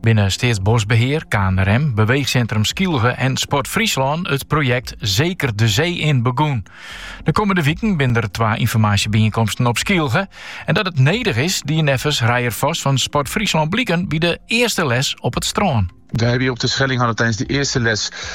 binne Steatsboskbehear, KNRM, Beweegcentrum Skylge en Sport Fryslân it projekt Zeker de Zee in begûn. De kommende wiken binne der twa ynformaasjebijeenkomsten op Skylge. En dat het nedich is, die neffens Rijer Vos fan Sport Fryslân bliken by de earste les op het strân. Wij hebben hier op Terschelling hadden tijdens de eerste les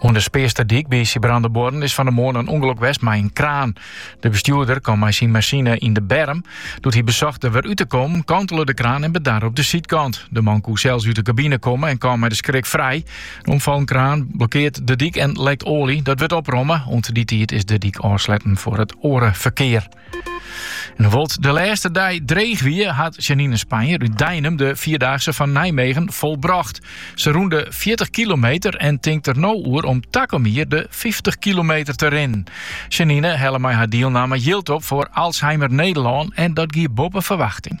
Oan de Spearsterdyk by Sibrandabuorren is fan de moarn in ûngelok west mei in kraan. De bestjoerder kaam mei syn masine yn de berm. Doe't hy besocht der wer út te kommen, kantele de kraan en bedarre op de sydkant. De man koe sels út de kabine komme en kaam mei de skrik frij. De omfallen kraan blokkearret de dyk en lekt oalje. Dat wurdt opromme. Oant dy tiid is de dyk ôfsletten foar it oare ferkear. En hoewol't de lêste dei dreech wie, hat Janine Spanjer út Deinum de Vierdaagse fan Nijmegen folbrocht. Se rûn de 40 kilometer en tinkt der no oer om takom jier de 50 kilometer te rinnen. Janine helle mei har dielnamme jild op foar Alzheimer Nederlân en dat gie boppe ferwachting.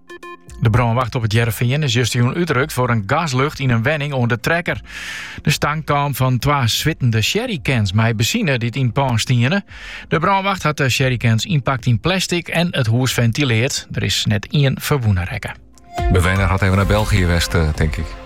De brânwacht op it Hearrenfean is justjûn útrukt foar in gaslucht yn in wenning oan de Trekker. De stank kaam fan twa swittende jerrycans mei benzine dy't yn it pân stiene. De brânwacht hat de jerrycans ynpakt yn plastic en it hûs fentileard. Der is net ien ferwûne rekke. Bewenner hat even naar België west, eh, tink ik.